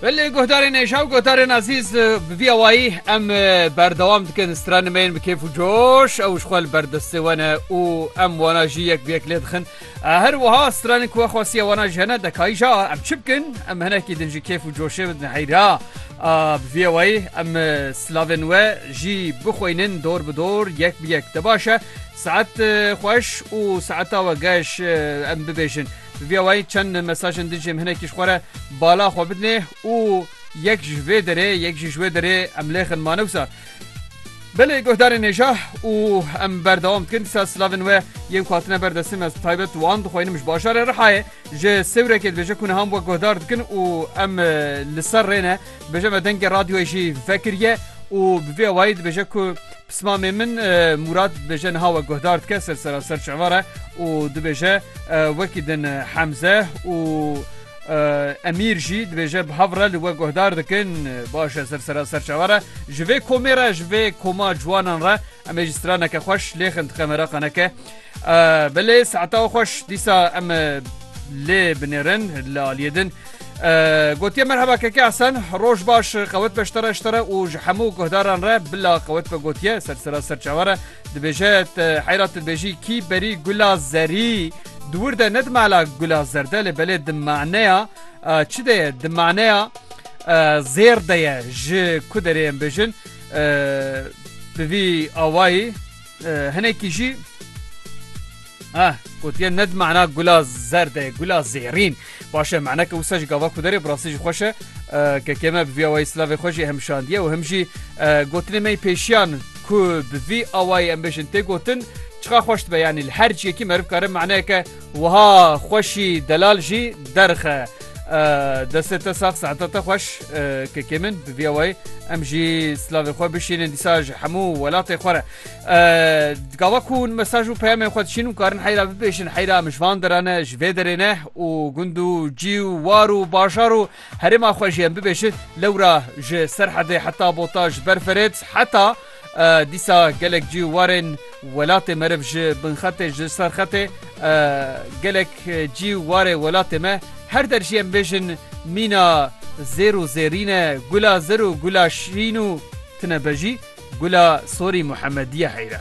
Belê guhdarên êşa û guhdarên ezîz bi vî awayî em berdewam dikin stranimeyên bi kêf û coş ew ji xwe li berdestê we ne û em wana jî yek bi yek lê dixin her wiha stranên ku we xwestiye wana ji hene dekayî ja em çi bikin em hinekî din ji kêf û coşê bidin heyra bi vî awayî em silavên we jî bixweynin dor bi dor yek bi yek te baş e saet xweş û saeta we geş em bibêjin. Vê wayî çend mesajên din jê em hinekî ji xwe re bala xwe bidinê û yek ji vê derê yek jî ji wê derê em lêxin mane wisa. Belê guhdarên nêja û em berdewam dikin dîsa silavên we yên ku hatine ber destê me taybet wan dixwînim ji bajarê Rihayê ji sêwrekê dibêje ku niha em we guhdar dikin û em li ser rê ne dibêje me dengê radyoyê jî vekiriye û bi vê wayî dibêje ku Pismamê min Mûrad dibêje niha we guhdar dike ser seraser çava re û dibêje wekî din Hemze û Emîr jî dibêje bi hev re li we guhdar dikin baş e ser seraser çava re ji vê komê re ji vê koma ciwanan re em ê ji straneke xweş lêxin dixemera qeneke Belê saeta we xweş dîsa em lê binêrin li aliyê din. Gotiye merheba keke Esen roj baş qewet be ştera ştera û ji hemû guhdaran re bila qewet be gotiye ser sera ser çavere dibêje heyra tilbêjî kî berî gula zerî di wir de ne di mala gula zerde lê belê di maneya çi de ye di maneya zêr de ye ji ku derê em bêjin bi vî awayî hinekî jî Ah, gotiye ned mana gula zerde, gula zêrîn. Başe mana ke wisa ji gava ku derê birasî ji xweş e ke keme bi vî awayî slavê xwe jî hem şandiye û hem jî gotinê me pêşiyan ku bi vî awayî em bêjin tê gotin çiqa xweş dibe yanî li her ciyekî meriv kare manayeke Wiha xweşî delal jî derxe. Destê te sax saeta te xweş kekê min bi vîya wayî em jî silavê xwe bişînin dîsa ji hemû welatê xwe re. Gava ku hûn mesaj û peyamên xwe dişîn û karin heyra bibêjin heyra em ji van dere ne ji vê derê ne û gund û cî û war û bajar û herêma xwe jî em bibêjin lewra ji Serhedê heta Bota ji ber Ferêt heta Dîsa gelek cî warên welatê meriv ji binxetê ji ser xetê gelek cî warê welatê me her der jî em bêjin mîna zêr û zêrîne gula zir û gula şîn û tine be jî gula sorî Muhemedîye heyre.